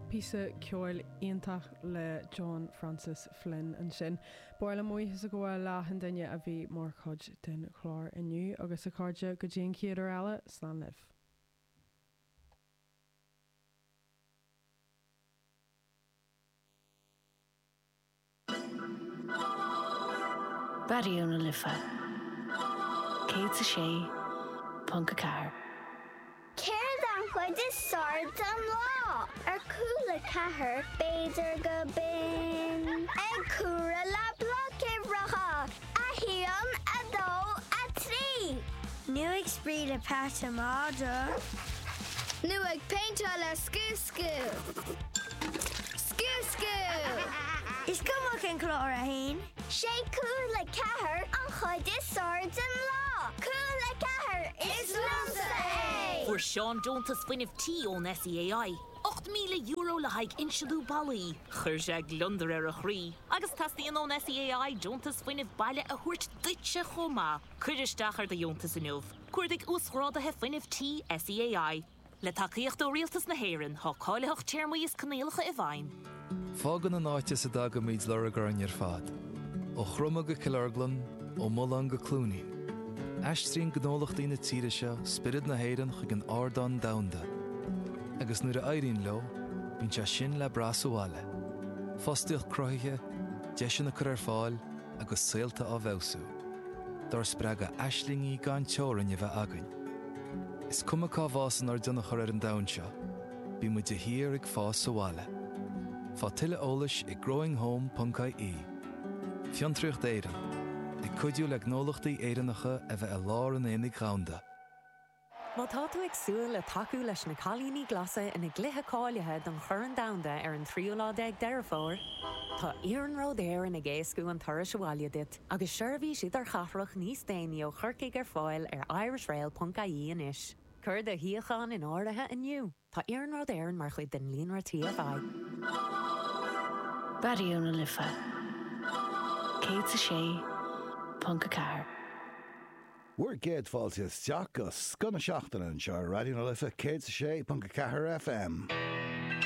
Píosa ceoil iontach le John Francis Flynn ansin. Ba mhaith liom buíochas a ghabháil le achan duine a bhí mar chuid den chlár inniu. Agus a chairde, go dtí an chéad uair eile, slán libh. Raidió na Life 106.4. Céard an chuid is fearr den lá? Ar Cúla a ceathair b'fhéidir gurb in ag comhaireamh le Blocuimhreacha! 1, 2, 3. Nó ag spraoi le Patról na Madraí. Nó ag péinteáil le scooscú. Scooscú! Is cuma cén clár atá ann. Sé Cúla a ceathair an chuid is fearr den lá. Cúla a ceathair is liomsa é! Fuair Seán deontas fuinnimh tí ón SEAI. €8,000 le haghaidh insliú ballaí. Chuir sé gliondar ar a chroí agus teastaíonn ón SEAI deontas fuinnimh baile a thabhairt duitse chomh maith. Cuir isteach ar do dheontas inniu. Cuardaigh Uasghráduithe Fuinnimh Tí SEAI. Le tacaíocht ó Rialtas na hÉireann, tá cáilitheacht, téarmaí is coinníollacha i bhfeidhm. Fágann an áit as a dtagann muid lorg orainn ar fad, ó Chromadh go Cill Orglan, ó Mullán go Cluainín. Aistríonn gnólachtaí na tíre seo spiorad na hÉireann chuig an ardán domhanda. Agus nuair a éiríonn leo, bíonn sé sin le brath sa bhaile. Fostaíocht cruthaithe, deiseanna á gcur ar fáil agus saolta á bhfeabhsú. Dár spreagadh aislingí gan teorainn a bheith againn. Is cuma cá bhfásann ár dtionchar ar an domhan seo, Beidh muid de shíor ag fás sa bhaile. Faigh tuilleadh eolais ag growinghome.ie. Fiontraíocht Éireann, ag cuidiú le gnólachtaí Éireannacha a bheith i lár an aonaigh dhomhanda. Má tá tú ag súil le tacú leis na Cailíní Glasa ina gcluiche cáilithe don Chorn Domhanda ar an tríú lá déag Deireadh Fómhair, tá Iarnród Éireann ag éascú an turais abhaile duit, agus seirbhís idirchathrach níos déanaí ó Chorcaigh ar fáil ar irishrail.ie anois. Cuir do shuíochán in áirithe inniu, tá Iarnród Éireann mar chuid den líonra TFI. Raidió na Life 106.4. Bhur gcéad fáilte isteach go scoth na seachtaine anseo ar Raidió na Life 106.4 FM.